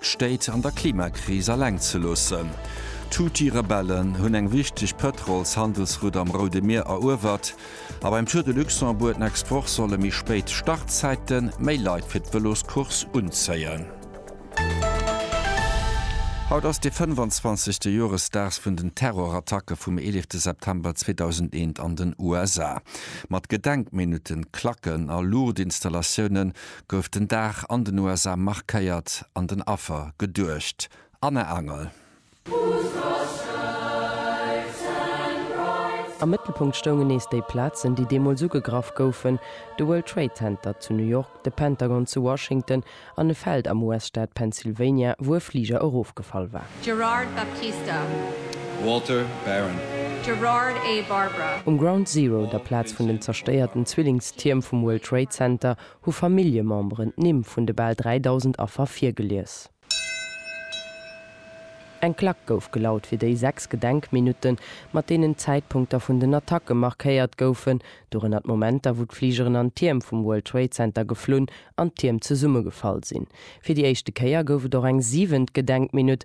d'Stéit an der Klimakris aleng ze loossen. D'Houthi-Rebellen hunn eng wichteg Pëtrolshandelsroute am Roude Mier eruewert a beim Tour de Luxembourg d'nächst Woch solle méi spéit Startzäite méi Leit fir d'Vëloscourse unzéien. Haut ass de 25. Joresdag vun den Terrorattacke vum 11 de September 2001 an den USA. Mat Gedenkminutten, Klacken a Luuchtinstallatiounen gouf den Dag an den USA markéiert an den Affer geduecht. Anne Angel. Am Mëttelpunkt stoungen nees déi Plazen, déi deemools ugegraff goufen, de World Trade Center zu New York, de Pentagon zu Washington an e Feld am US-Staat Pennsylvania, wou e Fliger erofgefall war. Gerard Baptista. Walter Barron. Gerard A. Barbara. Um Ground Zero, der Plaz vun den zerstéierten Zwillingstierm vum World Trade Center, hu Familljememberen d'Nimm vun de bal 3.000 Affer virgelies. Eng Klack gouf gelaut fir déi sechs Gedenkminutten, mat deenen d'Zäitpunkter vun den Attacke markéiert goufen, dorënner d'Momenter, wou d'Fligeren an d'Tierm vum World Trade Center geflunn an d'Tierm zesummegefall sinn. Fir déi éischte Kéier gouf et och eng siwent Gedenkminutt,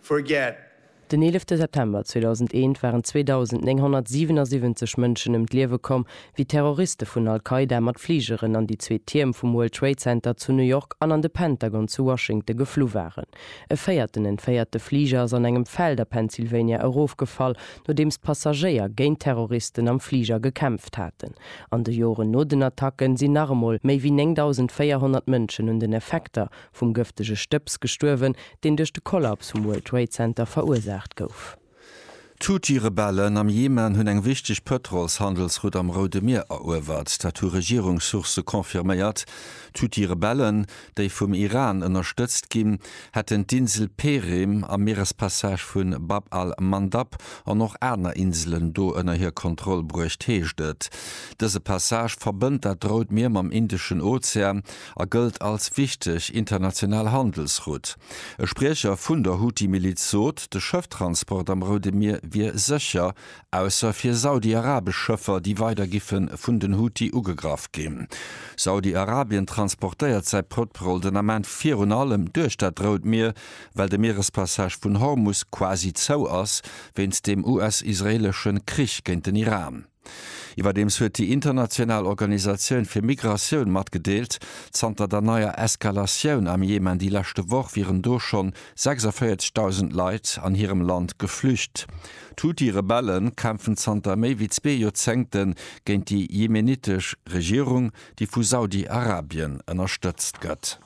forget. Den 11 September 2001 waren 2.977 Mënschen ëm d'Liewe komm, wéi Terroriste vun Al-Qaida mat Fligeren an déi zwee Tierm vum World Trade Center zu New York an an de Pentagon zu Washington geflu waren. E véierten entféierte Fliger ass an engem Feld a Pennsylvania erofgefall, nodeems d'Passagéier géint d'Terroristen am Fliger gekämpft haten. An de Joren no den Attacken sinn nach emol méi wéi 9.400 Mënschen un den Effekter vum gëftege Stëbs gestuerwen, deen duerch de Kollaps vum World Trade Center verursaacht gouf. D'Houthi-Rebellen am Jemen hunn eng wichteg Pëtrolshandelsroute am Roude Mier eruewert. Dat hu Regierungssourcë confirméiert. D'Houthi-Rebellen, déi vum Iran ënnerstëtzt ginn, hätten d'Insel Perim am Mierespassage vu Bab al-Mandab an och aner Inselen do ënner hir Kontroll bruecht, heescht et. Dëse Passage verbënnt dat Rout Mier mam Indeschen Ozean. a gëllt als wichteg international Handelsrutt. E Spriecher vun der Houthi-Miliz sot, de Schëfftransport am Roude Mier wier sécher, ausser fir saudi-arabesch Schëffer, déi weider giffe vun den Houthi ugegraff ginn. Saudi-Arabien transportéiert säi Pëtrol den Ament virun allem duerch dat Rout Mier, well de Mierespassage vun Hormus quasi zou ass, wéinst dem US-israeelesche Krich géint den Iran. Iwwerdeems huet déi international Organisatioun fir Migratioun matgedeelt, zanter der neier Eskalatioun am Jemen déi leschte Woch wieren do schonn 46.000 Leit an hirem Land geflücht. D'Huthi-Rebelle kämpfen zanter méi wéi zwee Joerzéngte géint déi jemenittesch Regierung, déi vu Saudi-Arabien ënnerstëtzt gëtt.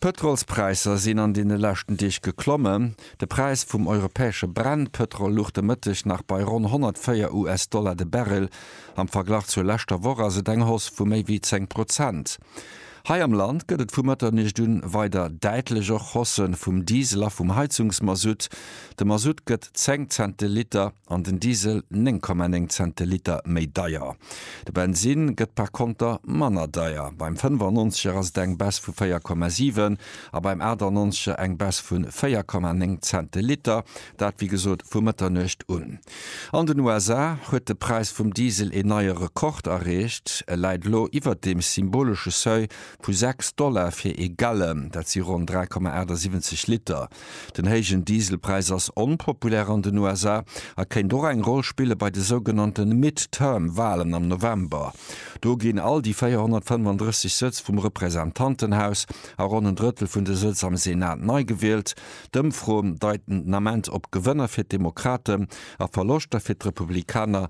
D'Pëtrolspräisser sinn an deene leschten Deeg geklommen. De Präis vum europäesche Brennpëtrol luch de Mëtteg nach bei ronn 104 US-Dollar de Barrel. Am Verglach zur leschter Woch ass et eng Hausse vu méi wéi 10 Prozent. Hei am Land gëtt et vu Mëtternuecht un weider däitlech och Hausse vum Diesel a vum Heizungsmasutt. De Masutt gëtt 10 Cent de Liter. an den Diesel 9,9 Cent de Liter méi deier. De Bensin gëtt par konter manner deier, beim 95er ass et eng Baisse vu 4,7 a beim 98er eng Baisse vu 4,9 Cent de Liter, dat wéi gesot vu Mëtternuecht un. An den USA huet de Präis vum Diesel een neie Rekord erreecht, e läit elo iwwert dem symbolesche Seuil vu 6 Dollar fir ee Gallon, dat si ronn 3,78 Liter. Den héijen Dieselpräis ass onpopulär an den USA a kéint och eng Roll spille bei de sougenannte Midterm-Walen am November. Do ginn all déi 435 Sëtz vum Representantenhaus a ronn en Drëttel vun de Sëtz am Senat nei gewielt. D'Ëmfroen deiten den Ament op Gewënner fir d'Demokraten a Verloschter fir d'Republikaner.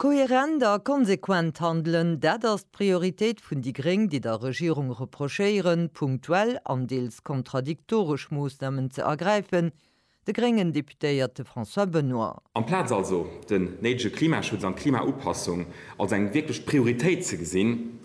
Kohärent a konsequent handelen, dat ass d'Prioritéit vun déi Gréng, déi der Regierung reprochéieren, punktuell an deels kontradiktoresch Moossnamen ze ergräifen, de gréngen Deputéierte François Benoy. Amplaz also den néidege Klimaschutz an d'Klimaupassung als eng wierklech Prioritéit ze gesinn,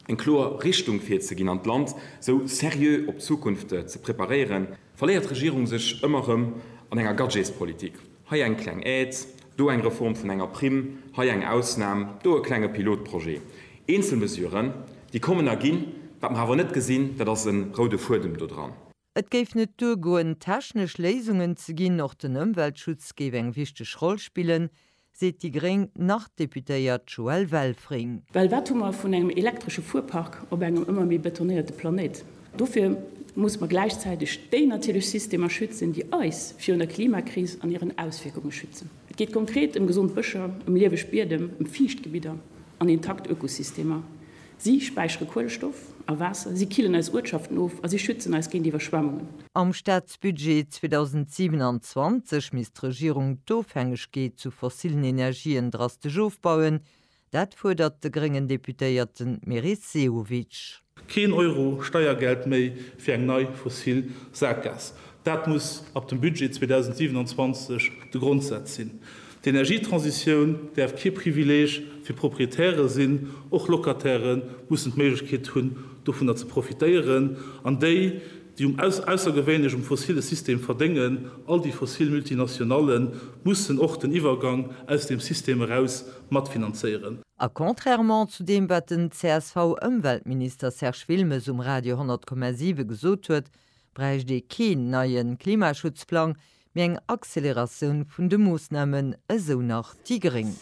eng kloer Richtung virzeginn an d'Land sou seriö op d'Zukunft ze preparéieren, verléiert d'Regierung sech ëmmer erëm an enger Gadgetspolitik. Hei eng kleng Aide, do eng Reform vun enger Primm, hei eng Ausnam, do e klenge Pilotprojet. Eenzel Mesuren, déi kommen a ginn. Wat mer awer net gesinn, dat ass e roude Fuedem do dran. Et géif net duergoen, technesch Léisungen ze ginn. Och den Ëmweltschutz géif eng wichteg Roll spillen, seet déi gréng Nord-Deputéiert Joëlle Welfring. Well wat hu mer vun engem elektresche Fuerpark op engem ëmmer méi betonéierte Planéit? Dofir musse mer gläichzäiteg déi natierlech Systemer schützen, déi eis virun der Klimakris an hiren Auswierkunge schützen. Et geet konkret ëm gesond Bëscher, ëm lieweg Biedem, ëm Fiichtgebidder an intakt Ökosystemer. Si späichere Kuelestoff a Waasser, si killen eis Uertschaften of a si schützen eis géint Iwwerschwemmungen. Am Staatsbudget 2027 misst d'Regierung d'Ofhängegkeet zu fossillen Energien drastesch ofbauen, Dat fuerdert de gréngen Deputéierten Meris Sehovic. Keen Euro Steiergeld méi fir eng nei fossil Sackgaass, dat muss ab dem Budget 2027 de Grondsaz sinn. D'Energietransitioun däerf kee Privileeg fir Proprietäre sinn, och Locatairë mussen d'Méiglechkeet hunn, dovunner ze profitéieren, an déi, déi um aussergewéinlech um fossille System verdéngen, all déi fossil Multinationallen, mussen och den Iwwergang aus deem System eraus matfinanzéieren. A contrairement zu deem, wat den CSV-Ëmweltminister Serge Wilmes um Radio 100,7 gesot huet, bräicht ee keen neie Klimaschutzplang, mee eng Acceleratioun vun de Moossnamen, esou nach déi gréng.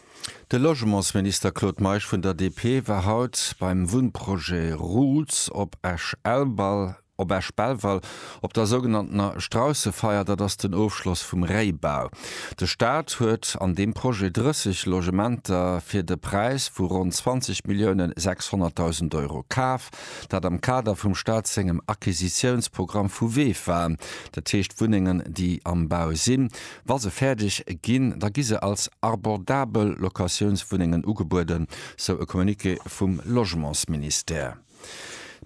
De Logementsminister Claude Meisch vun der DP war haut beim Wunnprojet Roots op Esch-Elbal. Op Esch-Belval, op der sougenanntener Straussefeier, dat ass den Ofschloss vum Réibau. De Staat huet an deem Projet 30 Logementer fir de Präis vu ronn 20 Milliounen 600.000 Euro kaf, dat am Kader vum Staat sengem Acquisitiounsprogramm vu VEFA, dat heescht Wunnengen, déi am Bau sinn. Wa se fäerdeg ginn, da gi se als abordabel Locatiounswunnengen ugebueden, sou e Communiqué vum Logementsministère.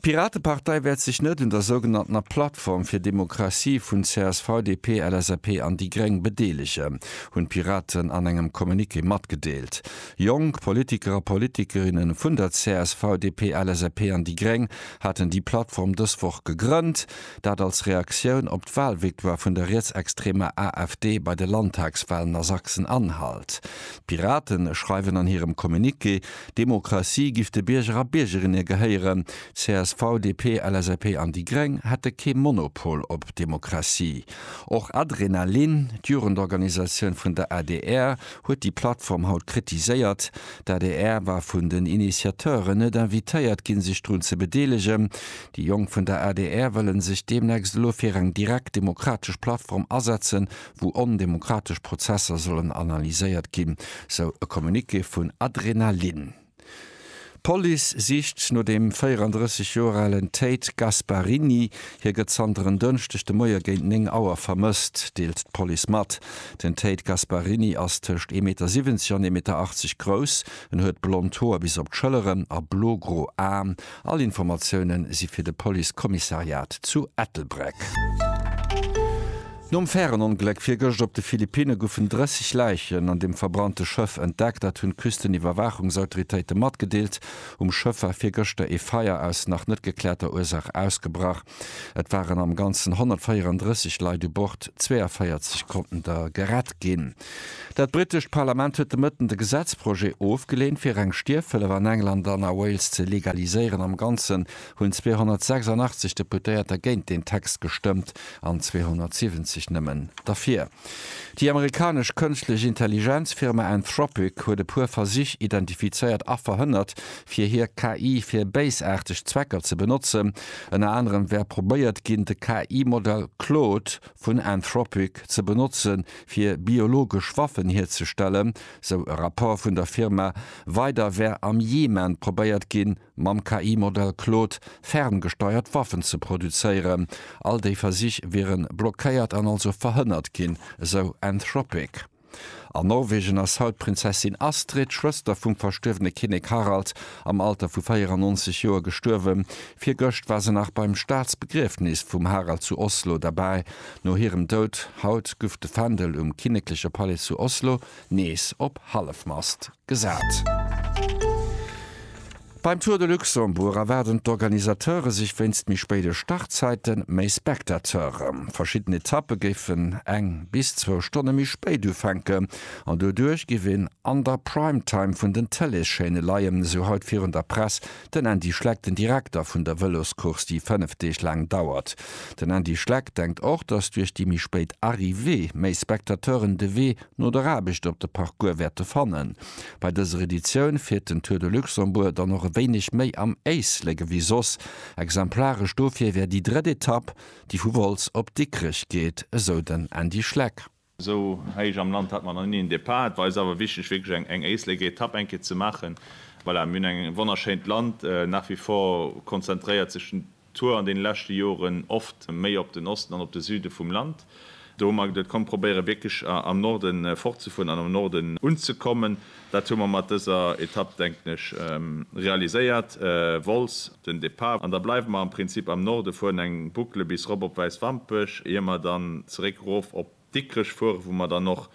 D'Piratepartei wäert sech net un der sougenanntener Plattform fir Demokratie vun csv, DP, LSAP an déi Gréng bedeelegen, hunn d'Piraten an engem Communiqué matgedeelt. Jonk Politiker a Politikerinne vun der csv, DP, LSAP an déi Gréng haten déi Plattform dës Woch gegrënnt, dat als Reaktioun op d'Walvictoire vun der rietsextremer AfD bei de Landtagswalen a Sachsen-Anhalt. D'Piraten schreiwen an hirem Communiqué, Demokratie giff de Bierger a Biergerinne gehéieren. CSV, DP, LSAP an déi Gréng hätte kee Monopol op Demokratie. Och Adrenalin, d'Jugendorganisatioun vun der adr, huet déi Plattform haut kritiséiert. D'adr war vun den Initiateuren net invitéiert ginn, sech drun ze bedeelegen. Déi Jonk vun der adr wëllen sech deemnächst elo fir eng direkt demokratesch Plattform asetzen, wou ondemokratesch Prozesser sollen analyséiert ginn, sou e Communiqué vun Adrenalin. D'Police sicht no dem 34 Joer alen Tate Gasparini. Hie gëtt zanter en Dënschdeg de Moie géint 9 Auer vermësst, deelt d'Police mat. Den Tate Gasparini ass tëscht ee Meter 70 an ee Meter 80 grouss. En huet blond Hoer bis op d'Schëlleren a blogro Aen All Informatiounen si fir de Police Commissariat zu Ettelbreck. Nom Färenongléck virgëscht op de Philippinne goufen 30 Läichen an dem verbrannte Schëff entdeckt. Dat hunn d'Küsteniwwerwaachungsautoritéite matgedeelt. Um Schëff war virgëschter ee Feier aus nach net gekläerter Ursaach ausgebrach. Et waren am Ganzen 134 Leit u Bord, 42 konnten der gerett ginn. Dat brittescht Parlament huet de Mëtten de Gesetzprojet ofgeleent, fir reng Stierfhëllef an England an a Wales ze legaliséieren. Am Ganzen hunn 286 Deputéierter géint deen Text gestëmmt an 270 nëmmen derfir. Déi amerikanesch kënschtlech Intelligenz-Firma Anthropic huet e puer Versich identifizéiert a verhënnert, fir hir KI fir béisaarteg Zwecker ze benotzen. Ënner anerem wär probéiert ginn, de KI-Modell Claude vun Anthropic ze benotze fir biologesch Waffen hierzestellen, sou e Rapport vun der Firma. Weider wär am Jemen probéiert ginn, mam KI-Modell Claude ferngesteiert Waffen ze produzéieren. All déi Versich wiere blockéiert an also verhënnert ginn, esou Anthropic. An Norwegen ass haut d'Prinzessin Astrid, Schwëster vum verstuerwene Kinnek Harald, am Alter vu 94 Joer gestuerwen. Virgëscht war se nach beim Staatsbegriefnis vum Harald zu Oslo derbäi. No hirem Doud haut guff de Fändel um kinnekleche Palais zu Oslo nees op Hallefmast gesat. Beim Tour de Luxembourg erwaarden d'Organisateure sech wéinst méi spéide Startzäite méi Spectateure. Verschidden Etappe géifen eng bis zwou Stonne méi spéit ufänken an doduerch géif een an der Prime Time vun den Tëleeschaîne leien, esou haut virun der Press den Andy Schleck, den Direkter vun der Vëloscourse, déi fënnef Deeg laang dauert. Den Andy Schleck denkt och, datt duerch déi méi spéit Arrivée méi Spectateuren de Wee no der Aarbecht op de Parcours wäerte fannen. Bei dëser Editioun fiert den Tour de Luxembourg dann och e wéineg méi am Éislek ewéi soss. Exemplaresch dofir wär déi drëtt Etapp, déi vu Wolz op Dikrech geet, esou den Andy Schleck. Esou héich am Land hat mer nach ni en Depart. Et war eis awer wichteg, wierklech eng Éislekétapp eng Kéier ze maachen. Voilà, mir hunn eng wonnerschéint Land nach wie vor, konzentréiert sech den. Tour an deene leschte Joren oft méi op den Osten an op de Süde vum Land. Do hu mer geduet, komm, probéiere wierklech am Norde fortzefueren an am Norden unzekommen. Dat hu mer mat dëser Etapp, denken ech, realiséiert. Wolz den Depart an da bleiwe mer am Prinzip am Norde, fueren eng Boucle bis erop op Wäiswampech, ier mer dann zeréck erof op. Dikrech fuere, wou mer dann och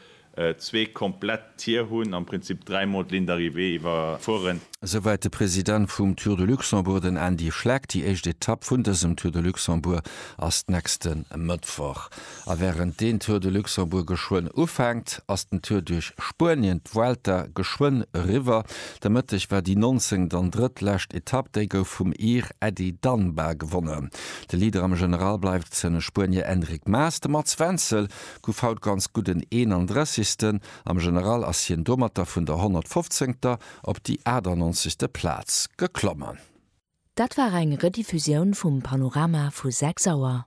zwee komplett Tier hunn, am Prinzip dräimol d'Ligne d'arrivée iwwerfueren. Esouwäit de President vum Tour de Luxembourg, den Andy Schleck. Déi éischt Etapp vun dësem Tour de Luxembourg ass d'nächste Mëttwoch. A wärend deen Tour de Luxembourg geschwënn ufänkt, ass den Tour duerch Spuenien, d'Vuelta, geschwënn eriwwer. De Mëtteg war déi nonzéngt an drëtt lescht Etapp, déi gouf vum Ir Ady Danba gewonnen. De Leader am General bleift den Spuenier Enric Maas. De Mats Wenzel gouf haut ganz gutt den 31. Am General ass hien domatter vun der 115. op déi 98. Plaz geklommen. Dat war eng Rediffusioun vum Panorama vu 6 Auer.